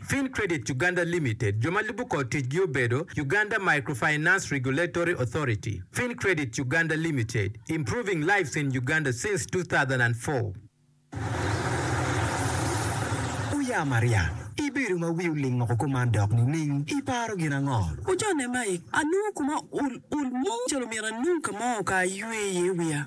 Fin Credit Uganda Limited, jo ma lubo kor ticgi obedo, Uganda Microfinance Regulatory Authority, Fin Credit Uganda Limited, improving lives in Uganda since two thousand and four. Oya Maria, ibedo ma wi oling woko kuman dok nining? Iparo gin ango? Ocone, Mike, anongo koma ul ul mo calo myero anong ka mo ka aywe iye wiya.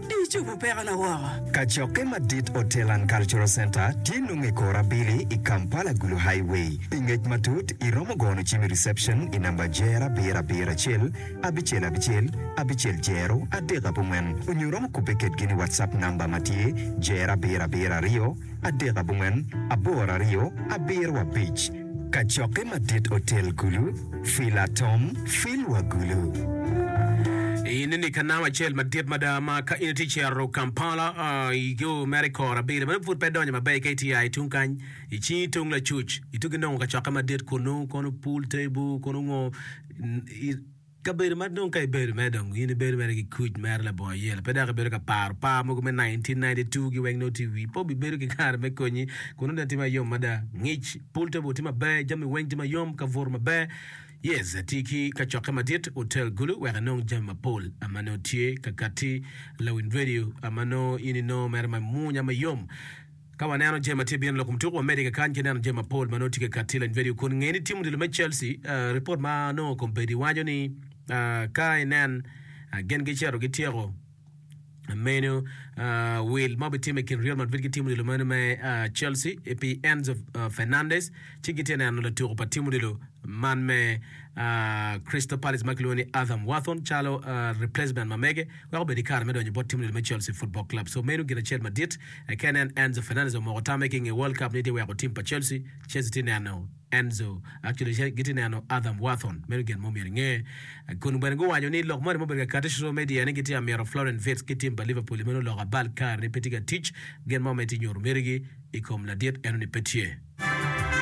Di cobo pekona woko. Kacokke madit Hotel and Cultural Center tye nongo i kor abili i Kampala Gulu Highway. Pi ngec matut, i romo gono cim i reception i namba jero abiro abiro acel abicel abicel abicel jero adek abongwen onyo romo kubbe kedgi ni WhatsApp namba ma tye jero abiro abiro aryo adek abongwen aboro aryo abiro abic. Kacokke madit otel gulu, fil atom, fil wa gulu. In ni ka nam acel madit mada ma ka in itye cito Kampala i yo mere kor abili ma pud pe idonyo maber ka itye ya i tung kany i cingi tung lacuc itugi nongo kacokke madit kunu kono pool table kunu ngo Kabedo ma dong ka ibedo mere dong in ibedo mere ki kuc mere labongo yelo pe dok ibedo ka paro par mogo me 1992 gi weng nongo tye wi pobi bedo ki kare me konyi kun nongo tye mayom mada ngic pool table tye maber jami weng tye mayom kabuto maber yes tye ki kacokke madit hotel gulu wek inong jami mapol ama nongo tye kakati lawiny radio ama nongo in inongo mere ma munya mayom Ka waneno jami ma tye ka bino lok kom tuko, wamedde ki kany ki neno jami mapol ma nongo tye ka kati i lany vidio kun nge ni tim odilo me Chelsea. Ripot ma nongo kombeddi waco ni ka inen gin gicito gityeko meno wil ma obitime i kin Real Madrid ki tim odilo meno me Chelsea pi Enzo Fernandez. ci gitye neno latuko pa tim odilo man me Crystal Palace ma kilwongo ni Adam Wharton calo replacement ma mege wek obed ki kare me donyo bot tim odilo me Chelsea Football Club. So meno gin acel madit eka nen Enzo Fernandez omoko tamme ki nge World Cup ni tye weko tim pa Chelsea. Chelsea tye neno Enzo, actually gitye neno Adam Wharton. Meno gin mo myero inge. Kun bene guwanyo ni lok moni mubedo ka kati social media ni gitye amyero Florian Wirtz ki tim pa Liverpool meno lok abal kare ni pe tye ka tic. Gin mo ma itye nyuto mitigi i kom ladit eno ni pe tye.